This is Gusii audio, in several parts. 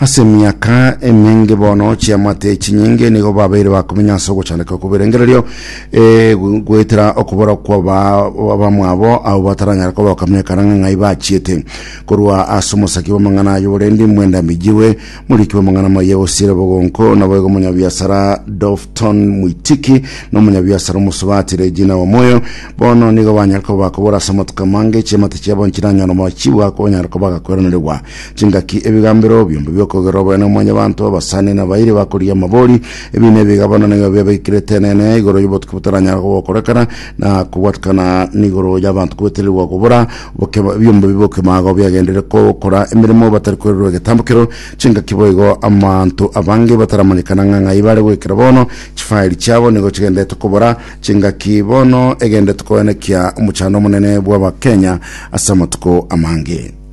Ase emiaka emenge bono chiamate echinyinge nigo babeire bakomenya ase ogochandeka kw'ebirengererio eh, gu- goetera okobora kw'abamwabo abo bataranyare koba bakamenyekana ng'a ng'ai bachiete korwa ase omosaki bw'amang'ana aye oborendi mwenda mijiwe moriki bw'amang'ana maye osiire bogonko naboigo omonyabiasara Dofton Mwitiki na omonyabiasara omosubati Regina Wamoyo bono nigo banyare koba bakobora ase amatuko amange chiamate chiabo nchiranyare mochigwa konyare koba gakoiraneregwa Chingaki ebigambero biombe bi'okogerwa oboene o Mwanyabaanto, abasani na abairi bakorigia amabori, ebi nebigabano nigo biabeikirete Eneene igoro y'obotuki botaranyara gokorekana na kobwatikana n'igoro y'abanto kwetererigwa kobora obokima, ebiombe bi'obokima agao biagenderire gokora emeremo batari kwererwa egetambo kero. Chingaki boigo amanto abange bataramanyekana ng'a ng'ai bare goikera bono, chifairi chiabo nigo chigenderete kobora chingaki bono egenderete koenekia omochando omonene bw'Abakenya ase amatuko amange.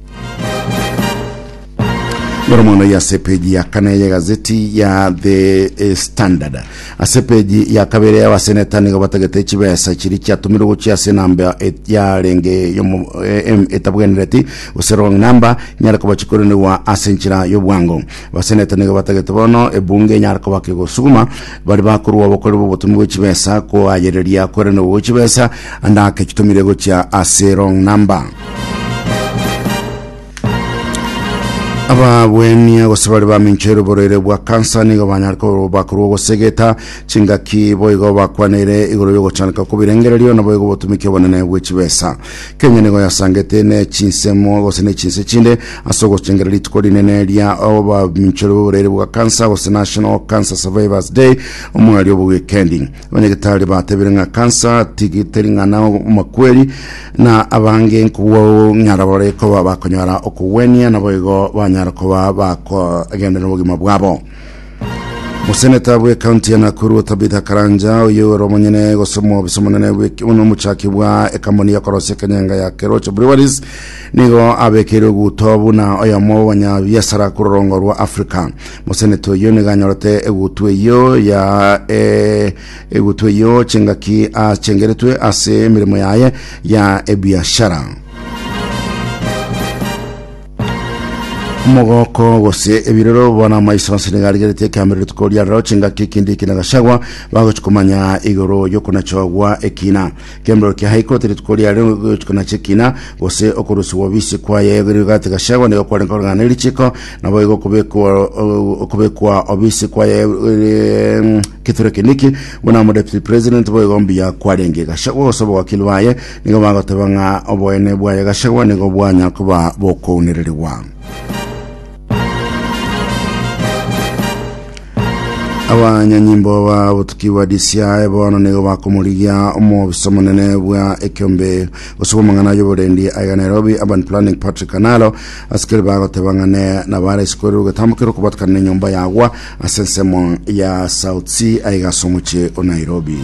Ndoro mono ya sepeji ya kane ya gazeti ya The eh, Standard. Ase peji ya kabere ya baseneta nigo batagete chibesa chiri chiatumire gochia ase namba et- yarenge yomo eh, em- etabwenereti gose wrong number nyare koba chikorenigwa ase enchera y'obwango Abaseneta nigo batagete bono ebunge enyare kobaka egosuguma bari bakorwa obokori bw'obotomi bwe chibesa koayereria kwerenerwa gwe chibesa andake chitomire gochia ase wrong number ababwenia gose bari baminchoire oborwaire bwa kansa nigo banyare ko- bakorwa ogosegeta chingaki boigo bakwanire igoro y'ogochaneka kw'ebirengererio naboigo obotumiki obonene bwe chibesa Kenya nigo yasangete ne chinsemo gose ne chinse chinde ase ogochengera rituko rinene ria obaminchori b'oborwaire bwa kansa gose National Cancer Survivors Day omweri obo weekendi. Abanyagetari batebire ng'a kansa tigi- teri ng'ana omokweri na abange nkobwao ng'ara bare koba bakonyara okogwenia naboigo banyara koba bakogenderera obogima bwabo. Moseneta bw'ekaunti ya Nakuru Tabitha Karanja oyo ore omonyene gosomwa obisa omonene buna omochaki bwa ekamboni ya korosia Kenyanga ya Kerocho Breweries nigo abekeire oguto buna oyomo bw'abanyabiasara kororongo rwa Africa. Moseneta oyo nigo anyorete egutu eyo ya e, egutu eyo chingaki achengeretwe ase emeremo yaye ya ebiashara. omogoko gose ebirero bono amaiso ase nigo arigerete ekeambero rituko ria rero chingaki ekindi ekina gachagwa bagochi komanya igoro yokonachogwa ekina ekeambero kia high court rituko ria rero gochikana chekina gose okorusigwa obisi kwaye yogerio gati gachagwa nigo kware nkorogana erichiko nabo igo okobekwa okobekwa obisi kwaye eh, keture keniki buna mo deputy president boigo mbuya kwarenge gachagwa gose obowakili baye Nigo bagoteba ng'a oboene bwaye gachagwa nigo bwanya koba bokounererigwa. Abanyanyimbo ba botuki bwa DCI bono nigo bakomorigia omobisa omonene bwa ekiombe gose bw'amang'ana y'oborendi aiga Nairobi Urban Planning Patrick Analo asikeri bagoteba ng'a ne nabare isikori ogetambukire okobatikana n'enyomba yagwa ase ensemo ya South Sea aiga ase omochie o Nairobi.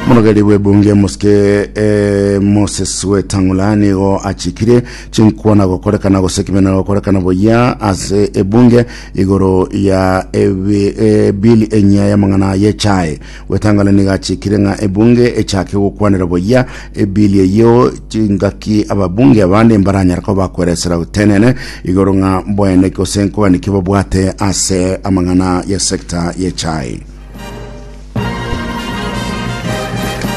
Omorogeri bw'ebunge Mosike eh, Moses Wetang'ula nigo achikire chinkwana gokorekana gose ekimenero gokorekana boyia ase ebunge igoro ya ebi- eh, bili enyia y'amang'ana y'echae Wetang'ula nigo achikire ng'a ebunge echake gokwanera boyia ebili eyio chingaki ababunge abande mbaranyare koba bakweresera gotenene igoro ng'a boene gose nkogani ki babwate ase amang'ana y'esekta y'echae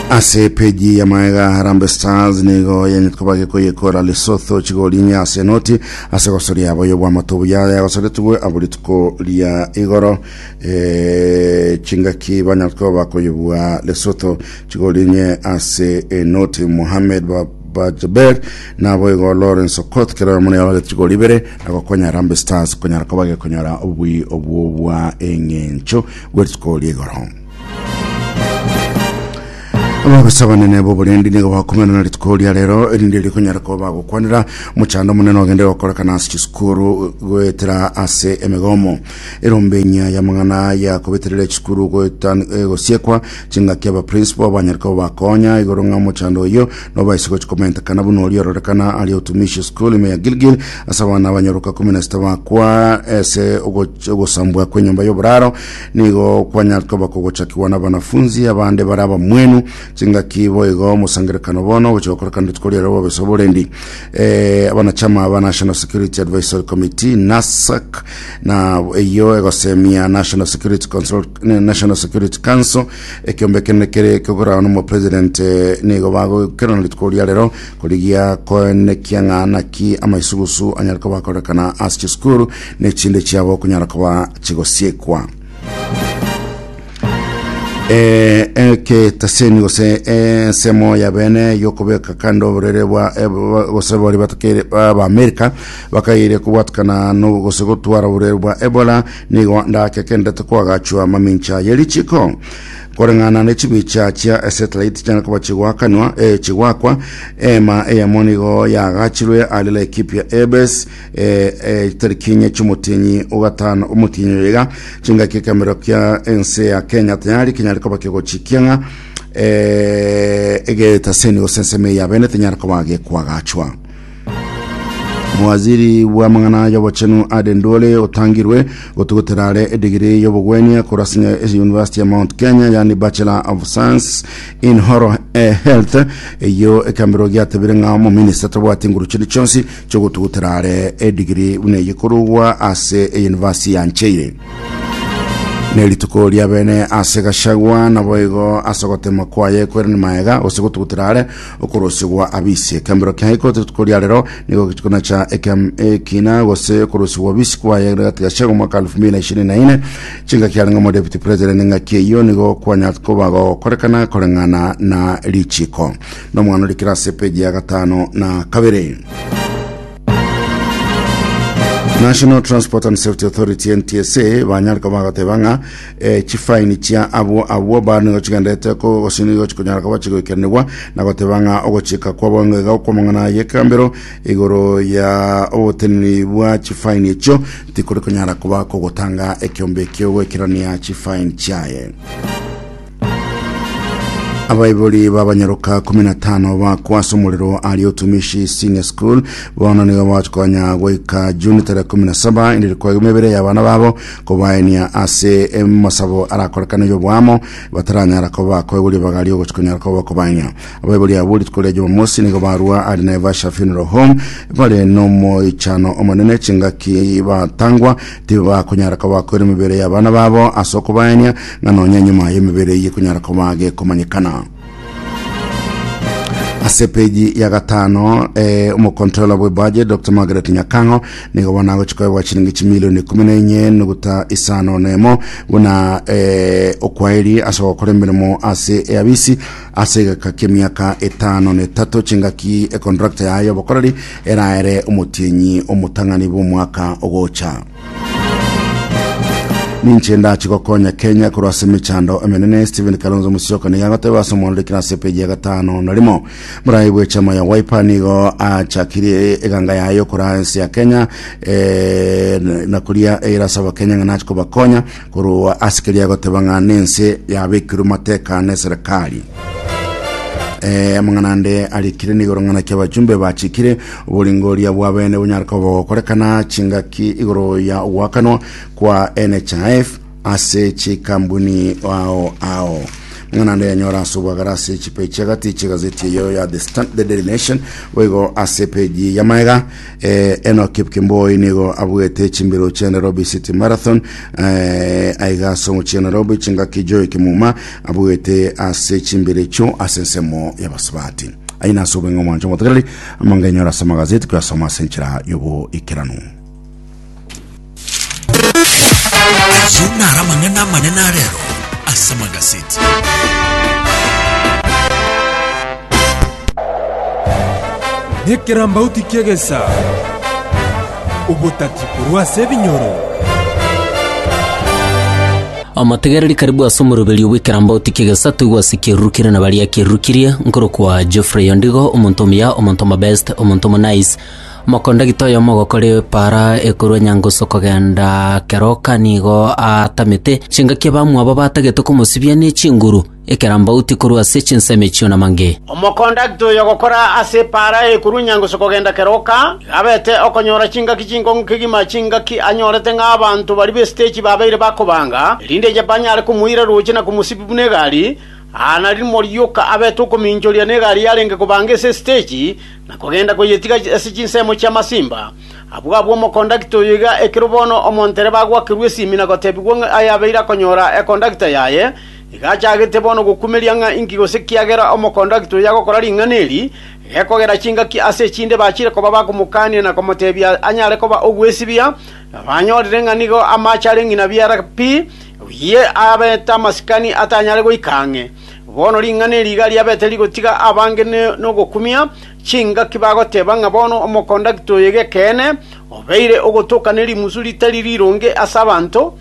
ase peji ya maega harambe stars nigo yenyete koba gekoyekora lesotho chigori inye ase enoti ase gosoria yabo y'obwamato obuya yagosoretigwe abo rituko ria igoro eh, chingaki banyete koba bakoyebua lesotho chigori inye ase enoti mohamed ba bajaber nabo igo lawrence okot kerero muna yabagete chigori ibere agokonya harambe stars konyara koba gekonyora obui obwo bwa eng'encho Gw'erituko ri'igoro. Aboroso abanene b'oborendi nigo bakomerana rituko ria rero erinde rikonyara kuba bagokwanera mochando omonene ogende gokorekana ase chisukuru goetera ase emegomo erombe enyia y'amang'ana ya kobeterera echisukuru goetan- eh, gosiekwa chingaki abaprinsipal banyare kuba bakonya igoro ng'a mochando oyio Nobaise gochi komentekana buna oria ororekana ari otumishi school ime ya Gilgil ase abana abanyaroka kumi na sita bakwa ese ogoch- ogosambwa kw'enyomba y'oboraro nigo kwanyakoba kogochakigwa n'abanafunzi abande bare abamwenu chingaki boigo omosangerekano bono ogochia gokorekana rituko riarwo bobesa oborendi eh, abanachama ba National Security Advisory Committee NASAC na eyio egosemia National Security Consult- National Security Council Ekeombe kende kere kogora nomo president nigo bagokerana rituko ria rero korigia koenekia ng'a naki amaisugusu anyare koba akorekana ase chisukuru ne chinde chiabo kunyara koba chigosiekwa eketeseni gose ensemo ya bene yokobeka kando oborere bwa gose bari batakeire ba amerika bakaire kobwatakana no gose gotwara oborere bwa ebola Nigo ndakegendete koagachwa mamincha ye richiko koreng'ana ne chibicha chia esetilaiti chiane koba chigwakanwa e chigwakwa. Eema eyemo nigo yaagachirwe are Laikipia Ebes eterikinye ch'omotienyi ogatano omotienyi oyega chingaki ekamero kia ense ya Kenya tayari kinyare koba kegochi kiang'a egetaseni gose ensemo eyabenete nyare koba gekwagachwa. Mowaziri bw'amang'ana y'obochenu Ade Ndwole otangirwe gotugutera are edigiri y'obogwenia korwa ase University ya Mount Kenya yani Bachelor of Science in Oral eh, Health eyo ekambero giatebire ng'a omominista tabwati nguru chiri chionsi chiogotugutera are edigiri buna eye korugwa ase University ya Ncheire ne rituko ria bene ase Gachagua naboigo ase ogotema kwaye kwerani maega gose gotugutera are Okorosegwa abisi. Ekembero kia iko rituko ria rero nigo rituko na cha ekem ekina gose okorosegwa abisi kwaye gati gasha go mwaka 2024 chinga kiarenge omo deputy president ninga kieyo nigo kwanya koba gokorekana koreng'ana na richiko no mwana rikira ase page ya gatano na kabere. National Transport and Safety Authority NTSA banyarika bagateba ng'a eh, chifaini chia abwo abwo ba nigo chigenderete ko- gose nigo chikonyara koba chigoikeranigwa na goteba ng'a ogochika kwabo ng'a iga okw'amang'ana y'ekambero igoro ya oboteneni bwa chifaini echio tikori konyara koba kogotanga ekeombe ki'ogoikerania chifaini chiaye abaibori babanyaroka kumi na tano bakwa ase omorero ari otumishi senior school bono nigo bakonya goika juni tarehe kumi na saba inde rikwaigwa emebere y'abana babo kobaenia ase emosabo arakorekana y'oboamo bataranyara koba koegoria bagari ogochi konyara koba kobaenia abaibori abo rituko ria jumamosi nigo barua ari naivasha funeral home bare nomoichano omonene chingaki batangwa tibe bakonyara koba koira emibere y'abana babo ase okobaenia ng'a nonya enyuma y'emibere eye konyara koba gekomanyekana ase peji ya gatano eh, omokontrola bwe budget dr margaret nyakang'o nigo bono agochia koebwa chiringi chimilioni ikumi na enye nuguta isano na emo buna eh, okwaeri ase gokora emeremo ase eabisi ase egeka ki'emiaka etano na etato chingaki ekontrakta yaye y'obokoreri eraere omotienyi omotang'ani bw'omwaka ogocha Ninche ndache gokonya Kenya korwa ase emechando emenene Stephen Kalonzo Musyoka nigo agoteba ase omwanureki na ase epeji ya gatano na rimo morai bwe chama ya Wiper nigo achakirie eganga yaye okora ense ya Kenya eh, na koria eyere ase abakenya ng'a nache kobakonya Korwa ase keria agoteba ng'a nense yabekirwe mateka neserekari. Eh, amang'ana ande arikire nigoro ng'ana kia abachumbe bachikire oboringo oria bwabene bonyare koba gokorekana chingaki igoro ya ogwakanwa kwa NHIF ase chikambuni ao ao ng'ana ande yanyora ase obwagara ase chipechi agati chegazeti eyo ya the, Stan- the daily nation boigo ase peji ya maega Eh, Enoch Kipkemboi nigo abuete chimbiro chia Nairobi City Marathon eh, aiga ase omochie Nairobi chingaki Joy Kimuma abuete ase chimbiro echio ase ensemo y'abasubati aina ase obweng'e omwancho omotegereri amangenyora ase amagazeti koyasoma ase enchera y'oboikeranu Ayio naro amang'ana amanene a rero ase magaseti. Nekerambauti ki'egesa, obotaki korwa ase ebinyoro. Omotegereri karibu ase omoroberio bw'ekerambauti ki'egesa toigwa ase ekeruru kere na baria ekeruru kirie, nkorokwa Geoffrey Ondigo, omonto omuya, omonto omobest, omonto omonice, Omokondagita oyomo ogokora epaara ekorwa enyangusu kogenda keroka nigo aatamete chingaki abamwabo batagete komosibia ne chinguru, ekerambauti korwa ase chinsemo echio namange. Omokondagita oyo ogokora ase epaara ekorwa enyangusu kogenda keroka nigo abete okonyora chingaki chinkong'u kegima, chingaki anyorete ng'a abanto baria b'esitechi babeire bakobanga, erinde banyare komoira rooche na komosibia buna egari, Aa narimo rioka abete okominchoria negari yarenge kobanga ase esiteji, na kogenda koyetiga ase chinsemo chia masimba. Abwo abwo omokondakta oyo iga ekero bono omontereba agwakerwa esimi na gotebigwa ng'a aye abeire akonyora ekondakta yaye, iga achagete bono gokumeria ng'a inki gose kiagera omokondakta oyo agokora ring'ana eri, gekogera chingaki ase echinde bachire koba bakomokania na komotebia anyare koba ogwesibia, na banyorire ng'a nigo amache are ng'ina biara pi, Oyio abete amasikani atanyare goika ang'e. Bono ring'ana eri iga riabete rigotiga abange nogokumia chingaki bagoteba ng'a bono omokondakta oyo g'ekeene obeire ogotoka ne rimusu ritari rironge ase abanto.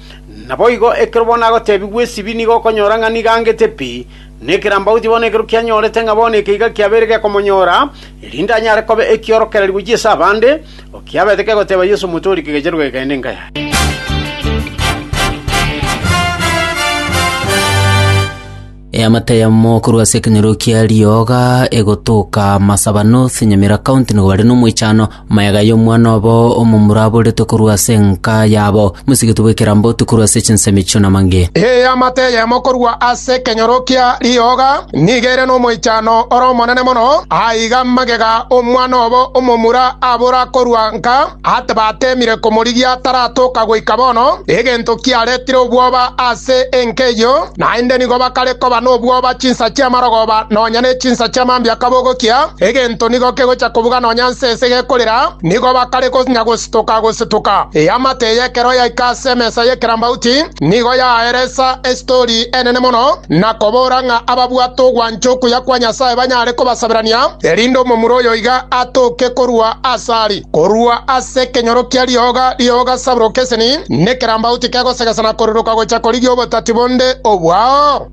Naboigo ekero bono agotebigwa esibi nigo okonyora ng'a nigo angete pi, na ekerambauti bono ekero kianyorete ng'a bono eke iga kiabeire gekomonyora, erinde anyare koba ekiorokererio gochia ase abande, Okiabete kegoteba Yeso omote oria kegechenu kagekaina enka yaye. Eamate eyemo korwa ase ekenyoro kia rioga egotoka Masaba North, Nyamira County nigo bare nomoichano maega y'omwana obo omomura aboretwe korwa ase enka yabo. Mosigiti bw'ekerambo otu korwa ase chinsemi chi'onamange. Eamate eyemo korwa ase ekenyoro kia rioga Nigo ere nomoichano ore omonene mono. Aiga magega omwana obo omomura abora korua nka ati bateemire komorigia taratoka goika bono, egento kiaretire obwoba ase enka eyio, naende nigo bakare koba nobwoba chinsa chi'amarogoba nonya ne chinsa chi'amambia kabogokia, egento nigo kegocha kobuga nonya nse ase gekorera, nigo bakare konya gosira. Tokagosetuka. Eamate y'ekero yaika ase emesa y'ekerambauti, nigo yaeresa esitori enene mono, na kobora ng'a ababwate ogwancha okuya kwa Nyasae banyare kobasaberania, erinde omomura oyo iga atoke korwa as'ari, korwa ase ekenyoro kia rioga rioga saburoka eseni, nekerambauti kegosegesa na koriroka gocha korigia obotati bonde obwao.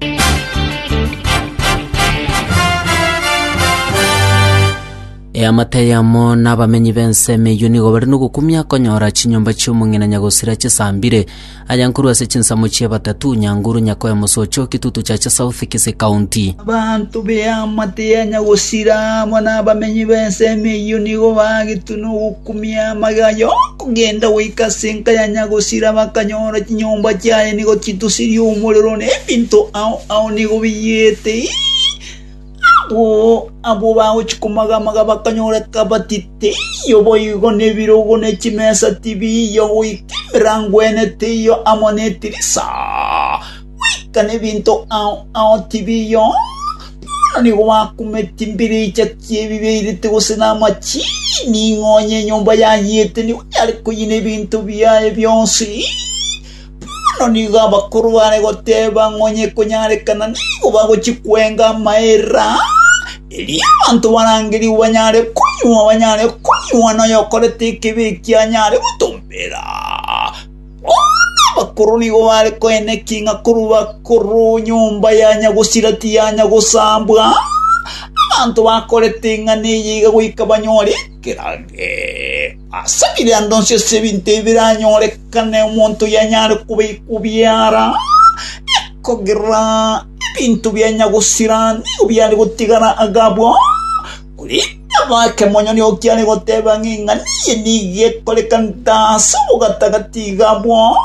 Eamate eyemo nabamenyi b'ense emeyio nigo bare nogokumia konyora chinyomba chi'omong'ina nyagosira chisambire, aya nkorwa ase chinsemo chie Batatu, Nyanguru, Nyakoya, Mosocho, Kitutu, Chacha South, Kisii County. Abanto b'eamate ya nyagosira amo nabamenyi b'ense emeyio nigo bagetwe nogokumia amage aya okogenda goika ase enka ya nyagosira bakanyora chinyomba chiaye nigo chitusirie omorero na ebinto ao ao nigo biyete ii. Abwo bagochia komaga-maga bakanyoreka bati teiyo boigo nebirogo ne chimesa tibiiyo goika emerango ene teiyo amo netirisa, goika nebinto ao ao tibiiyo. Bono nigo bakumeti mbiricha chi'ebibe irite gose namachini, ng'onye enyomba yayiete nigo yare koyina ebinto biaye bionsi. Bono nigo abakoro bare goteeba ng'a onye ekonyarekana nigo bagochia kwenga amaera aa, erio abanto barangerigwe banyare konywa, banyare konywa, na oyokorete ekebi ekio anyare gotombera. Bono abakoro nigo bare koenekia ng'a korwa bakoro nyomba yanya gosira tiyanya gosambwa, abanto bakorete ing'ana eye iga goika banyore ekerage. Ase birando inse y'ebinto ebi biranyorekane omonto oyanyare kobeikwa obiara, ekogera ebinto bianya gosira nigo biare gotigara agabwo. Korende abake monyene okiare goteba ng'a eng'ana eye nigo ekorekanete ase obogatagati iga abwo.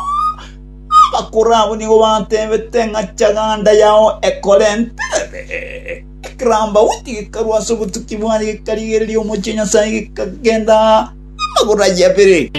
Abakoro abwo nigo batebete ng'a chaganda yao ekorenterere. Ekerambaoti gekarwa ase obotuki bwaye, gekarigereria omochie o Nyasae, gekagenda amagoro ayio abere.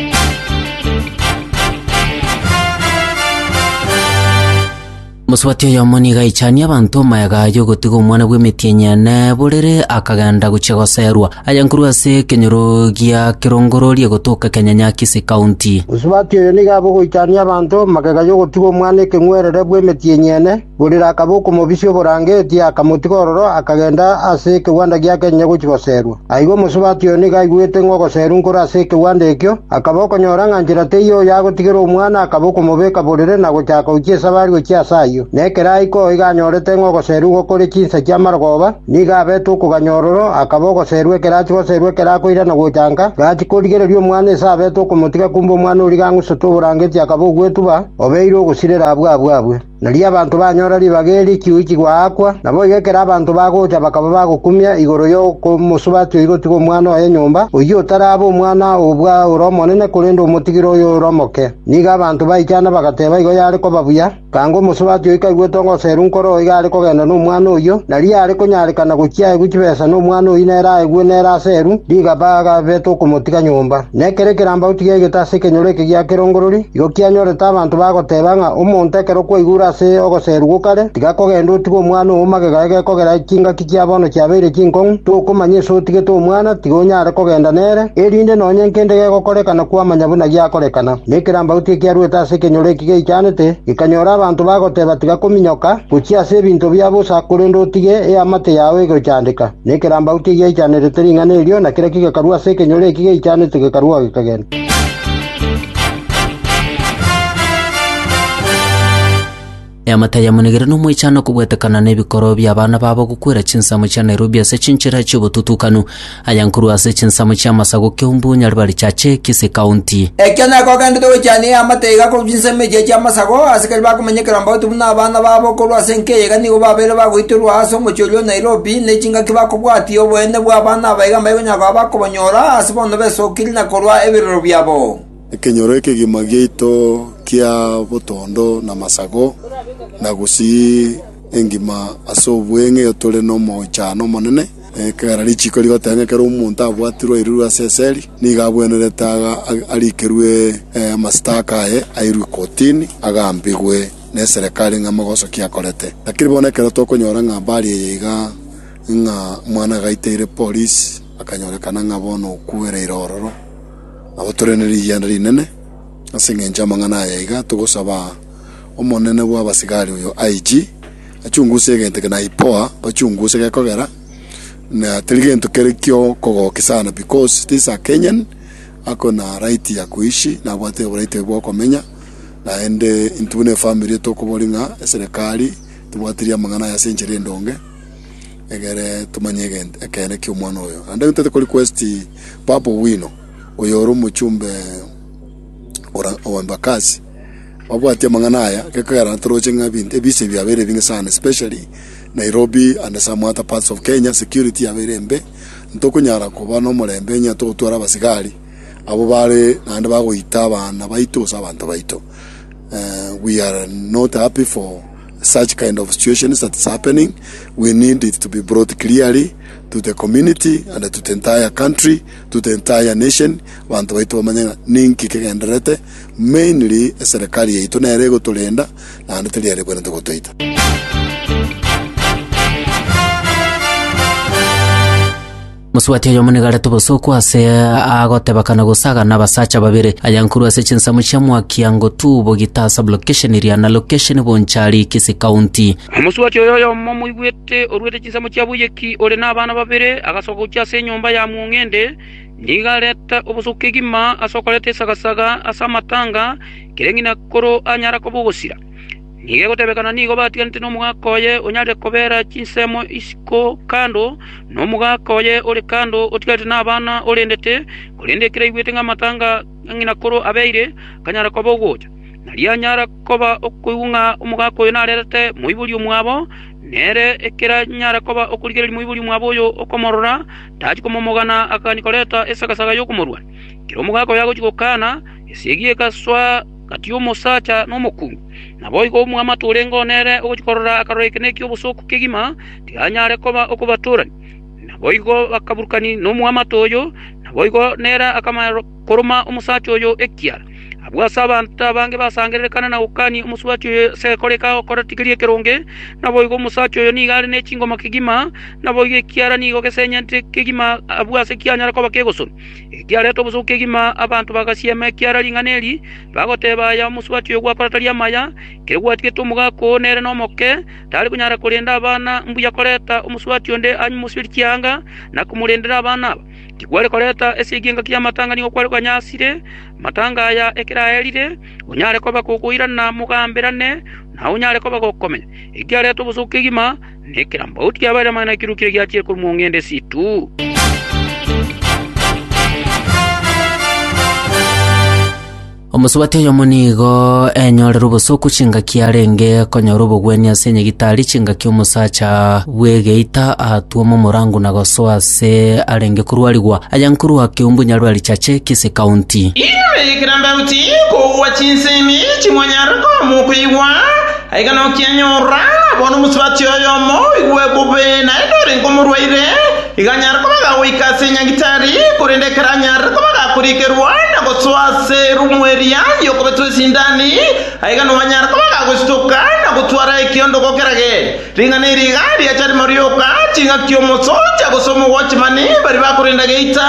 Mosubati oyomo nigo aichanie abanto omayega y'ogotiga omwana bw'emetienyi ene borere, akagenda gochia goserwa, aye nkorwa ase ekenyoro gia Kirongororie gotoka Ekenyanyakisi County. Mosubati oyo nigo abe ogoichania abanto magega y'ogotiga omwana ekeng'werere bw'emetienyi ene, Burira akaba okomobisia oborangeti, akamotiga ororo, akagenda ase ekegwanda giake onye gochia goserwa. Aiga omosubati oyo nigo aigwete ng'a ogoserwa nkore ase ekegwanda ekio, akaba okonyora ng'a nchera teiyo oyo agotigera omwana, akaba okomobeka borere na gochaka gochia esabari gochia ase ayio. Na ekero aika oo iga anyorete ng'a ogoserwa igo kore chinsa chi'amarogoba, nigo abete okoganya ororo, akaba ogoserwa ekero achia goserwa ekero akoirana gochanka, gachia korigereria omwana ise abete okomotiga kumbe omwana oria gang'usete oborangeti akaba ogwetuba, obeire ogosirera abwo abwo abwe. Nari abanto banyora ribaga eri chiuchi goakwa, naboigo ekero abanto bagocha bakaba bagokumia igoro y'okomosubatia oyi gotiga omwana oye nyomba, oyio otarabe omwana o bwa ore omonene, korende omotigire oyo ore omoke. Nigo abanto baichana bagateba igo yare koba buya. Kanga omosubatia oyi kaigwete ogoseru nkoro oo iga are kogenda nomwana oyio, nari yare konyarekana gochia aegwe chibesa nomwana oyio nere aegwe nere aseru, rigaba agabete okomotiga nyomba. Na ekero ekerambauti giaigete ase ekenyoro eke gia kerongorori, igo kianyorete abanto bagoteba ng'a omonto ekero okwaigure ase ogoserugwa o kare, tiga kogenda otige omwana oo magega aye gekogera chingaki chia bono chiabeire chinkong'u, tokomanya ese otigete omwana, tiga onyare kogenda nere, erinde nonya nkende gegokorekana kwamanya buna giakorekana. Na ekerambauti ekiaruete ase ekenyoro eki geichanete, gekanyora abanto bagoteba tiga kominyoka, gochia ase ebinto bia bosa, korende otige eamate yao egochandeka. Na ekerambau tigiaichanerete ring'ana erio, na kera kigakarwa ase ekenyoro eki giaichanete gekarwa gekagenda. Eamate yamonigire nomwechano kobwetekana nebikoro biabana babo gokwera chinsemo chia Nairobi ase chinchera chiobotutukanu, aya nkorwa ase chinsemo chia Masaku, Kiambu, Nyaribari, Chache, Kisii County. Ekio nekogenderete gochania eamate iga korwa chinsemo echiya chia Masaku, asikari bakomenya ekerambauti buna abana babo, korwa ase enka eyaiga nigo babeire bagoitorwa ase omochie oria o Nairobi. Nairobi, ne chingaki bakobwatia oboene bw'abana aba iga mbaikonyara koba bakobanyora ase bono besokirie na korua ebirero biabo. Ekenyoro ekegima giaito kia botondo na masago, na gusii engima ase obweng'ee tore nomochano omonene, ekero richiko rigoteba ekero omonto abwatirwe oirirwe ase eseli, nigo abwenerete arikerwe amasitaka aye, airwe kotini, agambigwe. neserekari ng'a mogosokia akorete. Lakini bono ekero tokonyora ng'a mbari eye iga ng'a omwana agaiteire polisi, akanyorekana ng'a bono okuereire ororo, nabo tore nerigianda rinene. Ase engencho y'amang'ana aya iga togosaba omonene bw'abasigari oyo IG, achunguse egento eke na IPOA bachunguse gekogera, na teri gento kere kiokogokia sana because this a Kenyan ako na right ya kuishi, nabwate oboraiti oye bwokomenya. Naende intwe buna efamiri tokoboria ng'a eserekari tebwatirie amang'ana aye ase enchera endonge, egere tomanye egento ekeene ki'omwana oyo. Naende intwe tikorequest Babu Owino, oyore omochumbe ora o Embakasi, babwatie amang'ana aya, gekogerana toroche ng'a ebinto ebise ebi biabeire ebing'e sana, especially Nairobi and some other parts of Kenya, security yabeire embe, ntokonyara koba nomorembe onye togotwara abasigari. abwo bare naende bagoita abana baito gose abanto baito. We are not happy for such kind of situations that is happening, we need it to be brought clearly to the community and to the entire country, to the entire nation, abanto baito bamanye ng'a ninki kegendererete, mainly eserekari yaito nere egotorenda naende teri ere ekwenerete gotoita. Mosubati oyomo nigo arete obosooku aase agoteba kana gosagana abasacha babere ayankuru ase chinsemo chia mwaki ango tu bogita sublocation eria na location Bonchari, Kisii County. Omosubati oyo oyomo omoigwete oruete chinsemo chia boyeki ore nabana babere agasoka gochia ase enyomba ya mong'ende nigo arete obosooku kegima ase okoreta esagasaga ase amatanga kereng'ina koro anyara koba ogosira. Nigo egotebekana nigo batiganete nomogaka oye onyare kobeera chinsemo isiko kando, na omogaka oye ore kando otigarete nabana orendete, korende ekero aigwete ng'a amatanga a ng'ina korwa abeire, akanyara koba ogocha. Nario anyara koba okoigwa ng'a omogaka oyo narerete moibori omwabo, nere ekero anyara koba okorigereria moibori omwabo oyo okomorora, tachia komomogana akagania koreta esagasaga y'okomorwania. Ekero omogaka oyo agochia gokana, esegi egasoa, Gati y'omosacha na omokungu. Naboigo omwamate orenge oo nere ogochia korora akarora ekenene eki'obosooku kegima, tikanyare koba okobatorania. Naboigo bakaburukania nomwamate oyo, naboigo nere akamanya koroma omosacha oyo ekiara. Abwo ase abanto abange basangererekana na gokania omosubati oyo ase egekore eke agokorete keria ekeronge, naboigo omosacha oyo nigo are ne chingoma kegima, naboigo ekiara nigo gesenyente kegima abwo ase kianyare koba kegosonwa. Ekiareta obosooku kegima abanto bagasiema ekiara ring'ana eri, bagoteeba aya omosubati oyo gwakorataria amaya, kere gwatigete omogaka oo nere nomoke, tari konyara korenda abana, mbuya koreta omosubati onde anywe omosiberi chianga na komorendera abana aba. Tikware koreta esegi engaki y'amatanga nigo kware konyasire amatanga aya ekero aerire, onyare koba kokoirana mogamberane, na onyare koba gokomenya. Ekiareta obosooku kegima. na ekerambaotu kiabaeire amang'ana ekirukire giachire korwa mong'ende esiitu. Omosubati oyomo nigo enyorire obosoku chingaki arenge konyora obogwenia ase enyegitari chingaki omosacha bw'egeita atwoma omorango na gosoa ase arenge korwarigwa aya nkorwa keumbu Nyarwari Chache Kisii County. Igoro y'ekerambaotu kogwa chinsemi chimonyare komokwigwa Aiga nokianyorora, bona omosubati oyomo oigwe bobe, naende orenge omorwaire, iga anyare koba agagoika ase enyagitari, korende ekero anyarire koba agakorikerwa na gosoa ase erumu eria y'okobetwa esindani, aiga noanyare koba agagositoka na gotwara ekiondoko kerage. Ring'ana eri iga riacha rimo rioka, ching'aki omosoja gose omogwachimani baria bakorenda geita,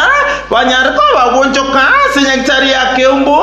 banyare koba bagwonchoka ase enyagitari ya keumbu,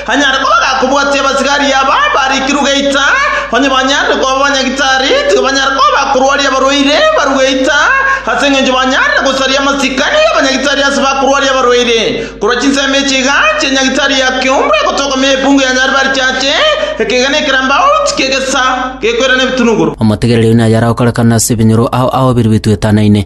Anyare koba gakobwatia abasigari aba barikirwe geita, onye banyarire koba banyagitari, tiga banyare koba bakorwaria abarwaire barwe geita, ase engencho banyarire gosaria amasikani y'abanyagitari ase bakorwaria abarwaire. Korwa chinsemo echi iga chi'enyagitari ya kiombe egotoka me epungu ya nyari barichache, ekeegena ekeramba outi kegesa gekoirana ebitunuguru. Omotegereri oyo nayare agokorekana ase ebinyoro ao ao biria bituetanaine,